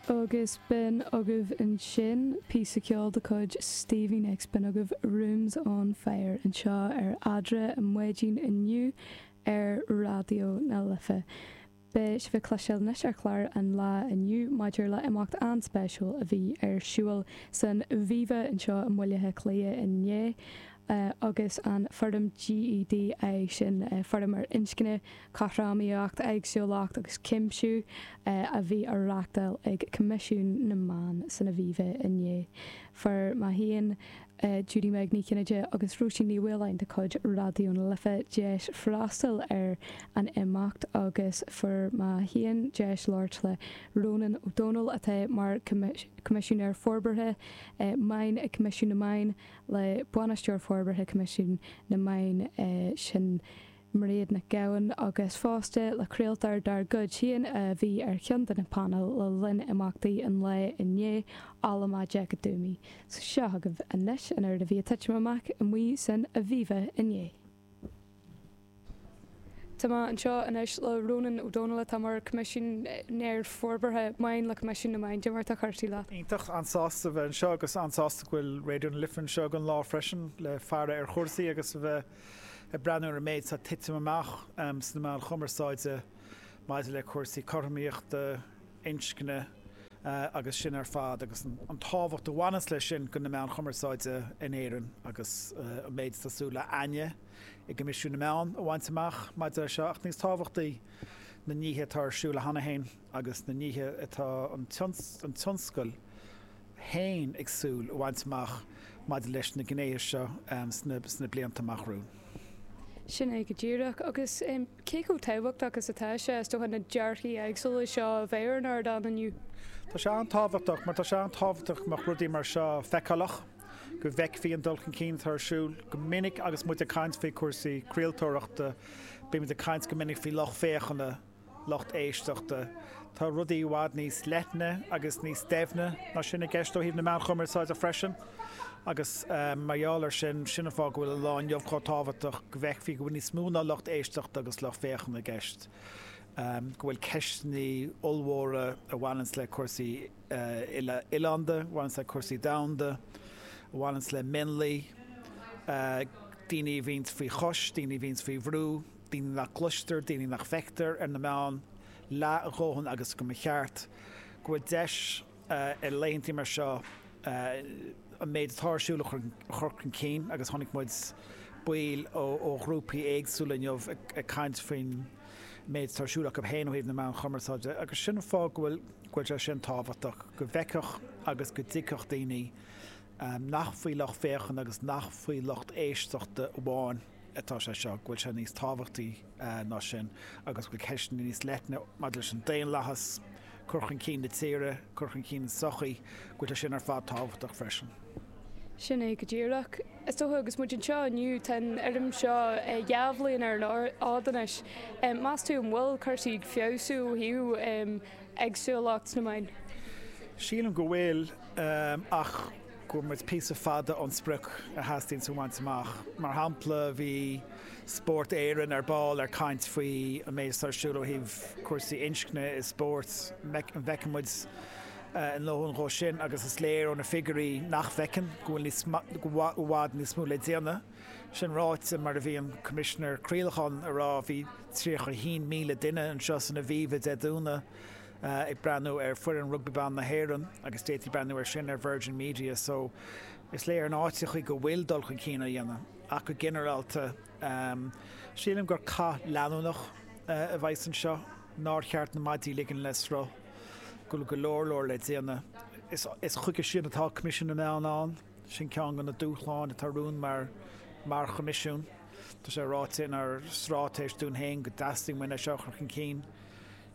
Agus b'in agaibh ansin píosa ceoil de chuid Stevie Nicks, b'in agaibh Rooms on Fire anseo ar Ar Maidin inniu ar Raidió na Life. Beidh sibh ag cloisteáil anois ar chlár an lae inniu maidir le imeacht an-spéisiúil a bhí ar siúil san Aviva anseo i mBaile Átha Cliath inné, agus an fóram GEDI, sin fóram ar inscne, cothromaíocht, éagsúlacht agus cuimsiú, a bhí á reachtáil ag Coimisiún na Meán san Aviva inné. Fuair mé féin, Judy-Meg Ní Chinnéide agus Róisín Ní Mhaoláin de chuid Raidió na Life deis freastal ar an imeacht agus fuair mé féin deis labhairt le Rónán Ó Domhnaill atá mar Choimisinéir Forbartha Meán ag Coimisiún na Meán, le Bainisteoir Forbartha Coimisiún na Meán sin Mairéad Nic Gabhann agus fosta le craoltóir dár gcuid féin a bhí ar cheann de na painéil le linn imeachtaí an lae inné, Alma Jack Doomy. Seo agaibh anois an rud a bhí ag titim amach amuigh san Aviva inné. Tá mé anseo anois le Rónán Ó Domhnaill atá mar Choimisinéir Forbartha Meán le Coimisiún na Meán. Cad é mar atá cúrsaí leat? Iontach, an-sásta a bheith anseo agus an-sásta go bhfuil Raidió na Life anseo ag an lá freisin le faire ar chúrsaí agus a bheith ag breathnú ar an méid atá ag titim amach sna meáin chumarsáide maidir le cúrsaí cothromaíochta, inscne agus sin ar fad agus an tábhacht a bhaineas leis sin do na meáin chumarsáide in Éirinn agus an méid atá súil againne i gCoimisiún na Meán a bhaint amach maidir leis seo ach níos tábhachtaí na nithe atá ar siúl cheana féin agus na nithe atá an tionscal féin ag súil a bhaint amach maidir leis na gnéithe seo sna blianta amach romhainn. Sin é go díreach agus. Cé chomh tábhachtach is atá sé, is dócha, na dearcthaí éagsúla seo a bheith ar an ardán inniu? Tá sé an-tábhachtach, mar tá sé an-tábhachtach go mbeadh rudaí mar seo feiceálach, go bhfeicfí an dul chun cinn atá ar siúl. Go minic agus muid ag caint faoi chúrsaí craoltóireachta, bímid ag caint go minic faoi lucht féachana, lucht éisteachta. Tá rudaí i bhfad níos leithne agus níos doimhne ná sin i gceist ó thaobh na meáin chumarsáide freisin agus mar gheall air sin, sin an fáth go bhfuil an lá inniu chomh tábhachtach, go bhfeicfí go bhfuil níos mó ná lucht éisteachta agus lucht féachana i gceist, go bhfuil ceisteanna ollmhóra a bhaineanns le cúrsaí uile-oileánda, a bhaineanns le cúrsaí domhanda, a bhaineanns le mionlaigh, daoine a bhíonns faoi chois, daoine a bhíonns faoi bhrú. daoine nach gcloistear, daoine nach bhfeictear ar na meáin leath a ndóthain agus go mba cheart go bhfuil deis ar laethantaí mar seo an méid atá ar siúl a chur chun cinn agus chonaic muid baill ó ghrúpaí éagsúla inniu ag caint faoin méid atá ar siúl acu féin ó thaobh na meán cumarsáide agus sin an fáth go bhfuil sé sin tábhachtach go bhfeicfeadh agus go dtuigfeadh daoine nach faoi lucht féachana agus nach faoi lucht éisteachta amháin atá sé seo, go bhfuil sé níos tábhachtaí ná sin agus go bhfuil ceisteanna níos leithne maidir leis an daonlathas, cur chun cinn na tíre, cur chun cinn na sochaí, go bhfuil sé sin ar fad tábhachtach freisin. Sin é go díreach. Is dócha, agus muid anseo inniu, tá an fóram seo dhá bhliain ar an fhód anois, meas tú an bhfuil cúrsaí ag feabhsú ó thaobh éagsúlacht sna meáin? Sílim go bhfuil ach. go bhfuil muid píosa fada ón sprioc a theastaíonns a bhaint amach. Mar shampla, bhí Spórt Éireann ar ball ag caint faoi an méid atá ar siúl ó thaobh cúrsaí inscne i spórt. An bhfeiceann muid ár ndóthain dhó sin agus is léir ó na figiúirí nach bhfeiceann, go bhfuil níos, go bhfuil i bhfad níos mó le déanamh. Sin ráite, mar a bhí an Coimisinéir Craolacháin a rá, bhí 31,000 duine anseo san Aviva Dé Domhnaigh, ag breathnú ar fhoireann Rugbaí Ban na hÉireann agus d'fhéadfaí breathnú ar sin ar Virgin Media so is léir in áiteachaí go bhfuil dul chun cinn á dhéanamh ach go ginearálta sílim gur cath leanúnach a bheas anseo nár cheart na maidí a ligean le sruth go bhfuil go leor leor le déanamh. Is chuige sin atá Coimisiún na Meán ann, sin ceann de na dúshláin atá romhainn mar mar Choimisiún. Tá sé ráite inár stráitéis dúinn féin go dteastaíonn uainn é seo a chur chun cinn.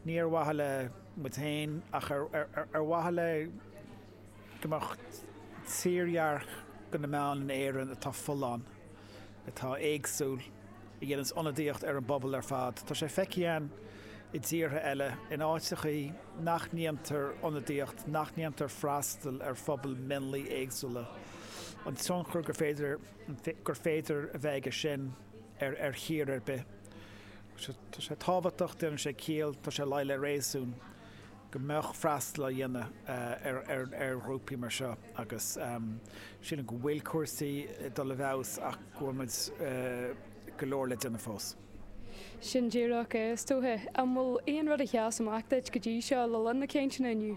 ní ar mhaithe le muid féin ach ar mhaithe le go mbeadh tírdhreach de na meáin in Éirinn atá folláin, atá éagsúil, a dhéananns ionadaíocht ar an bpobal ar fad. Tá sé feicthe againn i dtíortha eile, in áiteachaí nach ndéantar ionadaíocht, nach ndéantar freastal ar phobail mionlaigh éagsúla, an tionchar gur féidir a bheith aige sin. ar ar thír ar bith. Tá sé tábhachtach, déanann sé ciall, tá sé ag luí le réasún go mbeadh freastal á dhéanamh ar ar ar ghrúpaí mar seo agus sílim go bhfuil cúrsaí ag dul i bhfeabhas ach go bhfuil muid go leor le déanamh fós. Sin díreach é, is dócha. An bhfuil aon rud a sheas amach duit go dtí seo le linn na cainteanna inniu?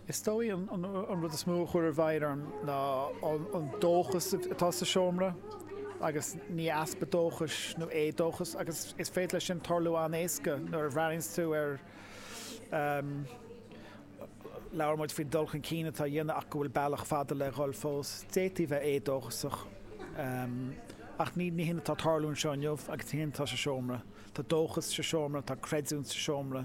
Is dóigh an rud is mó a chuir i bhfeidhm orm ná an dóchas atá sa seomra, agus ní easpa dóchais nó éadóchas, agus is féidir leis sin tarlú an-éasca nuair a bhreathnaíonns tú ar. Labhair muid faoin dul chun cinn atá á dhéanamh ach go bhfuil bealach fada le dhul fós. D'fhéadfaí a bheith éadóchasach, ach ní hin atá ag tarlú anseo inniu agus ní hé sin atá sa seomra. Tá dóchas sa seomra, tá creidiúint sa seomra.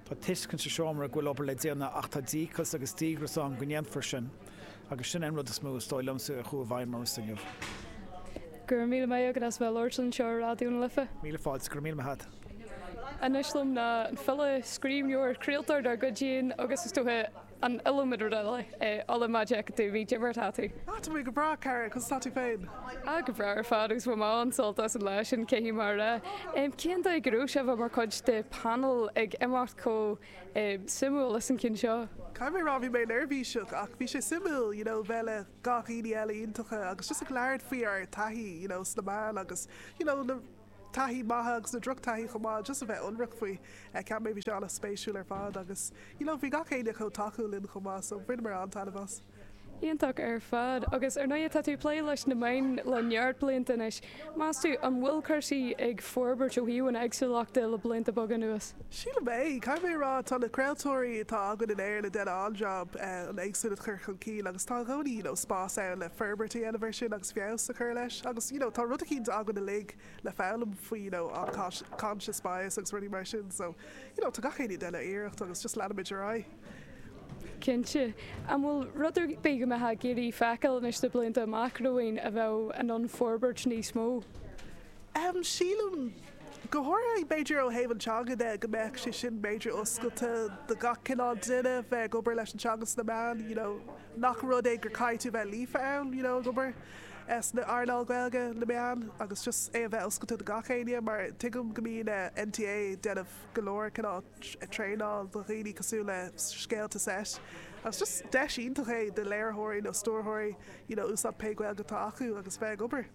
Tá tuiscint sa seomra go bhfuil obair le déanamh ach tá díocas agus díogras ann go ndéanfar sin agus sin é an rud is mó, is dóigh liomsa, a chuaigh i bhfeidhm ormsa inniu. Go raibh míle maith agat as bheith ag labhairt linn anseo ar Raidió na Life. Míle fáilte. Go raibh míle maith agat. Anois liom ná an file, scríbhneoir, craoltóir dár gcuid féin agus, is dócha, an iliomad rud eile, Ola Majekodunmi Dia dhuit conas atá tú. Ach tá mé go breá, cara, conas atá tú féin? Ah, go breá ar fad, agus bhain mé an-sult as an lá sin, cé hí mar ea? Em, cén dóigh go raibh sibh, mar chuid de panel, ag imeacht chomh, em, suimiúil is an cionn seo? Caithfidh mé a rá, bhí mé neirbhíseach, ach bhí sé suimiúil, you know, bheith le gach éinne eile iontacha agus just ag labhairt faoi ár taithí, you know, sna meáin agus, you know, na. taithí maith agus na drochtaithí chomh maith just a bheith ionraic faoi. Cheap mé bhí sé an-spéisiúil ar fad agus you know bhí gach éinne chomh tacúil linn chomh maith so bhaineamar an-taitneamh as. Iontach ar fad. Agus ar ndóigh tá tú ag plé leis na meáin le neart blianta anois. Meas tú, an bhfuil cúrsaí ag forbairt ó thaobh an éagsúlacht de le blianta beaga anuas? Sílim é. Caithfidh mé a rá tá na craoltóirí atá againn in Éirinn ag déanamh an-jab an éagsúlacht a chur chun cinn agus tá i gcónaí you know spás ann le forbairt a dhéanamh ar sin agus feabhas a chur leis agus you know tá rud eicínt againn uilig le foghlaim faoi you know unconscious bias agus rudaí mar sin so you know tá gach éinne ag déanamh a iarracht agus just leanfaimid ar aghaidh. Cinnte. An bhfuil rud ar bith go mbeifeá ag iarraidh feiceáil anois sna blianta amach romhainn a bheadh in ann forbairt níos mó? Em sílim, go háirithe b'fhéidir ó thaobh an teanga de go mbeadh sé sin b'fhéidir oscailte do gach cineál duine bheith ag obair leis an teanga sna meáin you know, nach rud é gur caithfidh tú bheith líofa ann, you know, ag obair sna earnáil Ghaeilge, na meáin agus just é a bheith oscailte do gach éinne mar tuigim go mbíonn eh NTA ag déanamh go leor cineál traenáil do dhaoine cosúil le scéalta seit agus just deis iontach é do léiritheoirí nó stiúrthóirí you know úsáid pé Gaeilge atá acu agus bheith ag obair.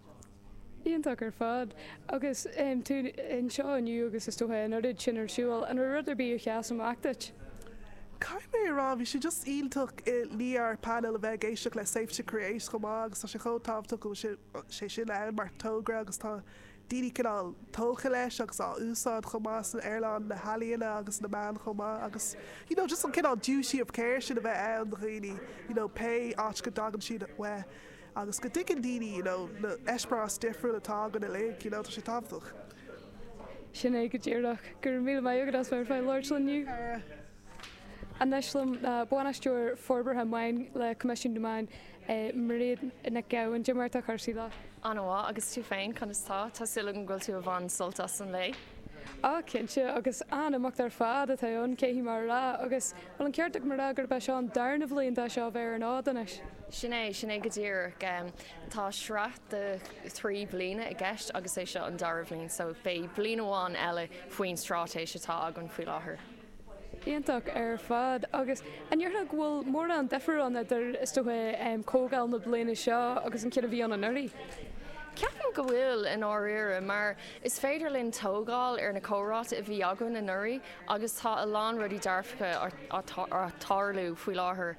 Iontach ar fad. Agus tú anseo inniu agus is dócha an oiread sin ar siúl, an raibh rud ar bith a sheas amach duit? Caithfidh mé a rá, bhí sé just iontach i ndiaidh ár panel a bheith ag éisteacht le Safe to Create chomh maith agus tá sé chomh tábhachtach go bhfuil sé sin ann mar togra agus tá daoine cineál tógtha leis agus á úsáid chomh maith san earnáil na healaíona agus na meán chomh maith agus you know just an cineál duty of care sin a bheith ann do dhaoine you know pé áit go dtagann siad uaidh. agus go dtuigeann daoine you know na eispéarais difriúil atá againn uilig you know tá sé tábhachtach. Sin é go díreach. Go raibh míle maith agat as bheith ar fáil le labhairt linn inniu. Anois liom ná Bainisteoir Forbartha Meáin le Coimisiún na Meán, Mairéad Nic Gabhann. A Mhairéad, cad é mar atá cúrsaí leat. An-mhaith, agus tú féin, conas tá? Tá suil agam go bhfuil tú ag baint sult as an lae. Á, cinnte, agus an-imeacht ar fad atá ann, caithfidh mé a rá, agus. Bhuel, an ceart agam a rá gurb é seo an darna bhliain dá seá a bheith ar an fhód anois. Sin é, sin é go díreach. Tá sraith de thrí bliana i gceist agus é seo an dara bhliain, so beidh bliain amháin eile faoin stráitéis atá againn faoi láthair. Iontach ar fad. Agus an ndéarfá go bhfuil mórán difear ann idir, is dócha, comhdháil na bliana seo agus an ceann a bhí ann anuraidh? Ceapaim go bhfuil, i ndáiríre, mar is féidir linn tógáil ar na comhráite a bhí againn anuraidh agus tá a lán rudaí dearfacha ag tarlú faoi láthair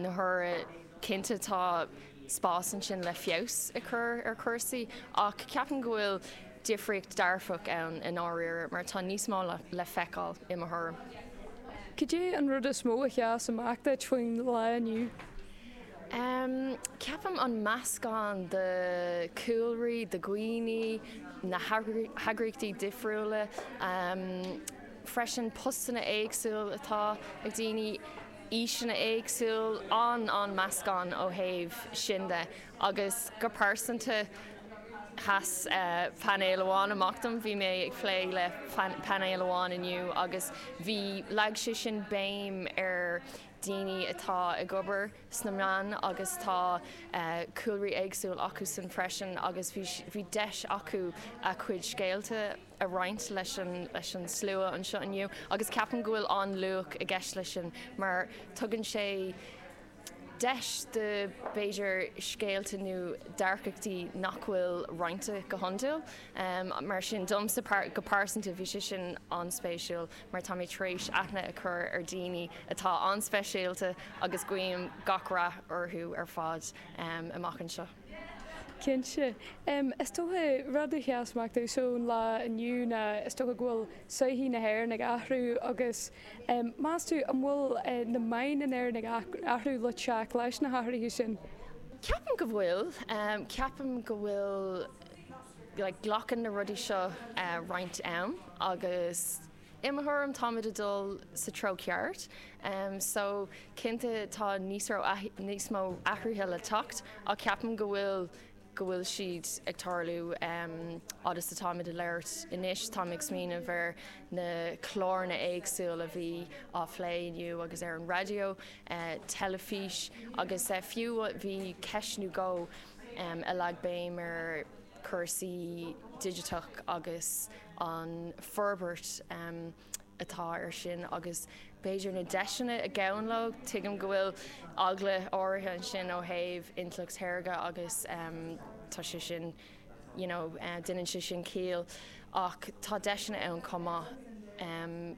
na huaire, cinnte tá spás ansin le feabhas a chur ar chúrsaí ach ceapaim go bhfuil difríocht dearfach ann i ndáiríre mar tá níos mó le feiceáil i mo thuairim. Cad é an rud is mó a sheas amach duit faoin lá inniu? Ceapaim an meascán de chúlraí, de dhaoine, na heagraíochtaí difriúla, freisin postanna éagsúil atá ag daoine, aoiseanna éagsúil, an, an meascán ó thaobh sin de. Agus go pearsanta, sheas painéal amháin amach dom, bhí mé ag plé le painéal amháin inniu agus bhí, leag sé sin béim ar. daoine atá ag obair sna meáin agus tá cúlraí éagsúil acu san freisin agus bhí deis acu a chuid scéalta a roinnt leis an slua anseo inniu agus ceapaim go bhfuil an-luach i gceist leis sin mar tugann sé deis do b'fhéidir scéalta nó dearcachtaí nach bhfuil roinnte go hiondúil mar sin domsa go pearsanta bhí sé sin an-spéisiúil. mar táimid tar éis aithne a chur ar dhaoine atá an-speisialta agus guím gach rath orthu ar fad amach anseo. Cinnte. Is dócha, rud a sheas amach domhsa ón lá inniu ná is dócha go bhfuil sochaí na hÉireann ag athrú agus meas tú an bhfuil na meáin in Éirinn ag athrú le teacht leis na hathruithe sin? Ceapaim go bhfuil. Ceapaim go bhfuil Glacann na rudaí seo roinnt am agus i mo thuairim táimid ag dul sa treo ceart so cinnte tá níos mó athruithe le teacht ach ceapaim go bhfuil go bhfuil siad ag tarlú fhad is atáimid ag labhairt anois. Táim ag smaoineamh ar na cláranna éagsúla a bhí á phlé inniu agus ar an raidió, teilifís agus fiú bhí ceist nó dhó a leag béim ar chúrsaí digiteach agus an forbairt atá ar sin agus b'fhéidir na deiseanna a ghabhann leo. Tuigim go bhfuil eagla áirithe ansin ó thaobh intleacht shaorga agus tá sé sin, you know, déanann sé sin ciall ach tá deiseanna ann chomh maith.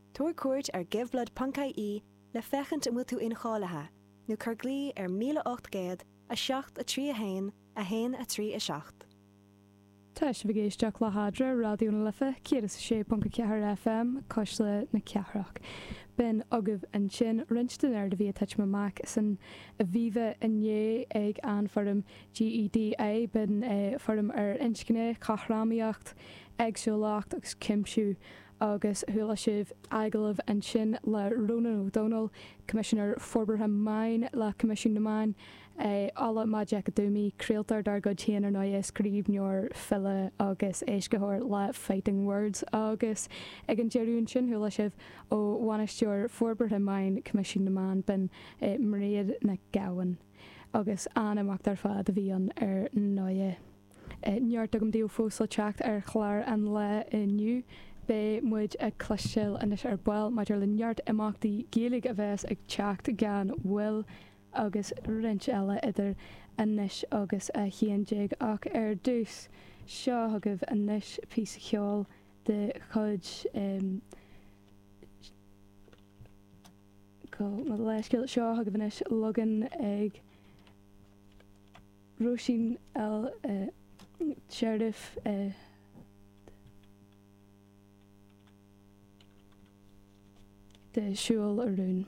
Tabhair cuairt ar giveblood.ie le féachaint an bhfuil tú incháilithe, nó cuir glao ar 1800 731 137. Tá sibh ag éisteacht le hArdráthaí Raidió na Life 106.4 FM cuisle na cathrach. B'in agaibh ansin roinnt den a raibh ag titim amach san Aviva inné ag an bhfóram GEDI. B'in é fóram ar inscne, cothromaíocht, éagsúlacht agus cuimsiú agus chuala sibh agallamh ansin le Rónán Ó Domhnaill, Coimisinéir Forbartha Meáin le Coimisiún na Meán, é ag labhairt le Mícheál Ó Tuama, craoltóir dár gcuid féin ar ndóigh, scríbhneoir, file agus éascaitheoir le Fighting Words, agus ag an deireadh ansin chuala sibh ó Bhainisteoir Forbartha Meáin Coimisiún na Meán, b'in í Mairéad Nic Gabhann. Agus an-imeacht ar fad a bhí ann ar ndóigh. neart againn daoibh fós le teacht ar chlár an lae inniu. Beidh muid ag cloisteáil anois ar ball maidir le neart imeachtaí Gaeilge a bheas ag teacht gan mhoill, agus roinnt eile idir anois agus a haon déag, ach ar dtús, seo chugaibh anois píosa ceoil de chuid em. Gabh mo leithscéal, seo chugaibh anois leagan ag. Róisín El Cherif de Siúil a rúin.